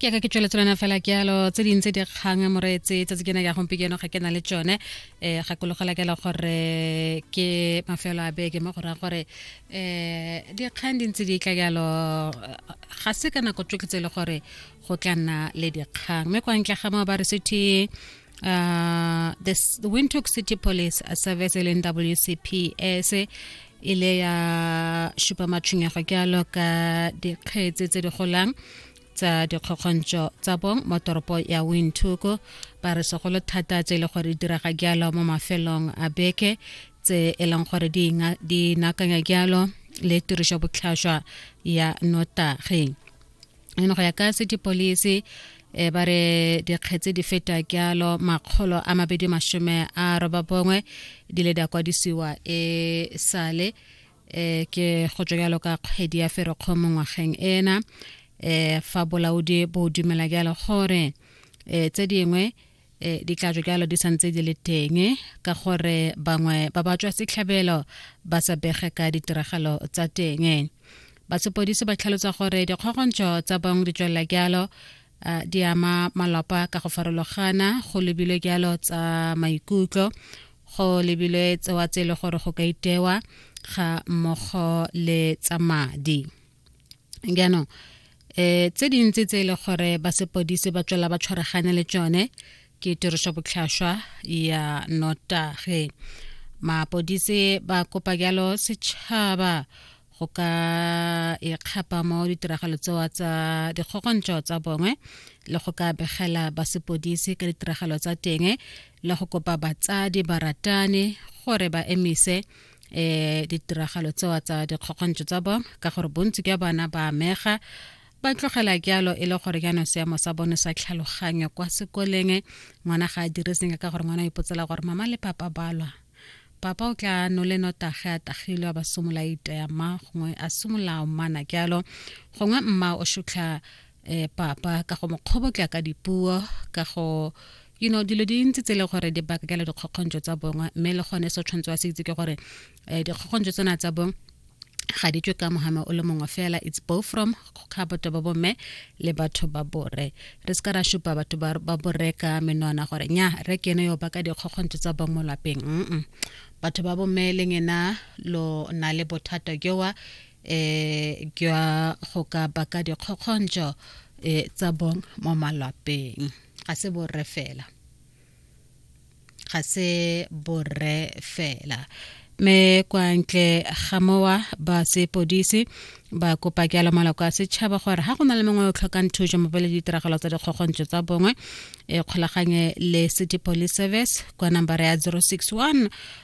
ke ka ke tsweletse lena fela ke yalo tse dintse di kgang moreetse tsatsi kena ya gompieno ga ke na le tsone um gakologela kela gore ke mafelo a beke mo go raya gore um dikgang di ntse di tla yalo ga se ka nako tsoke tse e le gore go tla nna le dikgang mme kwa ntle ga moo ba re sethe uh, the S- the windhoek city police uh, service e leng wcps e le ya šupa matshwenyego ke alo ka dikgetse tse di golang tsa dikgokgontšo tsa bong mo toropo ya windhoek ba re segolo thata tse e le gore di diraga jalo mo mafelong a beke tse e leng gore di inga- di nakanya jalo le tirišo botlhaswa ya notageng eno go ya ka city police e ba re dikgetse di feta kyalo makgolo a mabedi masome a roba bongwe di le di a kwadisiwa e sale um ke go tswa jalo ka kgwedi ya ferekgo mo ngwageng ena um fa bolaodi bo dumela jalo gore um tse dingwe e di tla jo jalo di santse di le teng ka gore bangwe ba ba tswa setlhabelo ba sa bege ka ditiragalo tsa teng basepodisi ba tlhalosa gore dikgogontsho tsa bangwe di tswelela jalo di ama malapa ka go farologana go lebilwe jalo tsa maikutlo go lebilwe tsewa tse e le gore go ka itewa ga mmogo le tsa madi jaanong um tse dintsi tse e le gore ba sepodise ba tswela ba tshwaragane le tsone ke tiriso botlhaswa ya notageng mapodise ba kopa jalo setšhaba go ka ikgapa e mo ditiragalo tsewa tsa dikgogontšo tsa bongwe le go ka begela basepodisi ka ditiragalo tsa teng le go kopa batsadi baratani gore ba emise eh ditiragalo tsewa tsa dikgokgontso tsa bo ka gore bontsi ka bana ba amega ba tlogela jalo e le gore jaanong seemo sa bone sa tlhaloganyo kwa sekoleng ngwana ga a dire senye ka gore ngwana o ipotsela gore mama le papa balwa papa o tla no le notage a tagilwe a ba somola iteya mma gongwe a somola mmana jalo gongwe mma o shutlha eh papa ka go mokgobotla ka dipuo ka go you know dilo di ntse tsele gore di bakela dikgokgontso tsa bongwe mme le gone se tshwanetse wa se itse ke gore um dikgokgontso tsena tsa bong ga di tswe ka mohama o le mongwe fela it's both from ga batho ba bomme le batho ba bore re se ka ra supa batho ba bore ka menwana gore nya re kene yo ba ka dikgokgontso tsa bong mo lapeng batho ba bomme leng ena lo na le bothata jowa eh jwa go ka baka dikgokgontšo eh tsa bong mo malwapeng ga se borre fela ga se borre fela me kwa ntle ga mowa ba sepodisi ba kopa ke ala maloko a setšhaba gore ga go na le mongwe o tlhokang thuso mo pele ditiragalo tsa dikgokgontso tsa bongwe e kgolaganye le city police service kwa nambara ya 061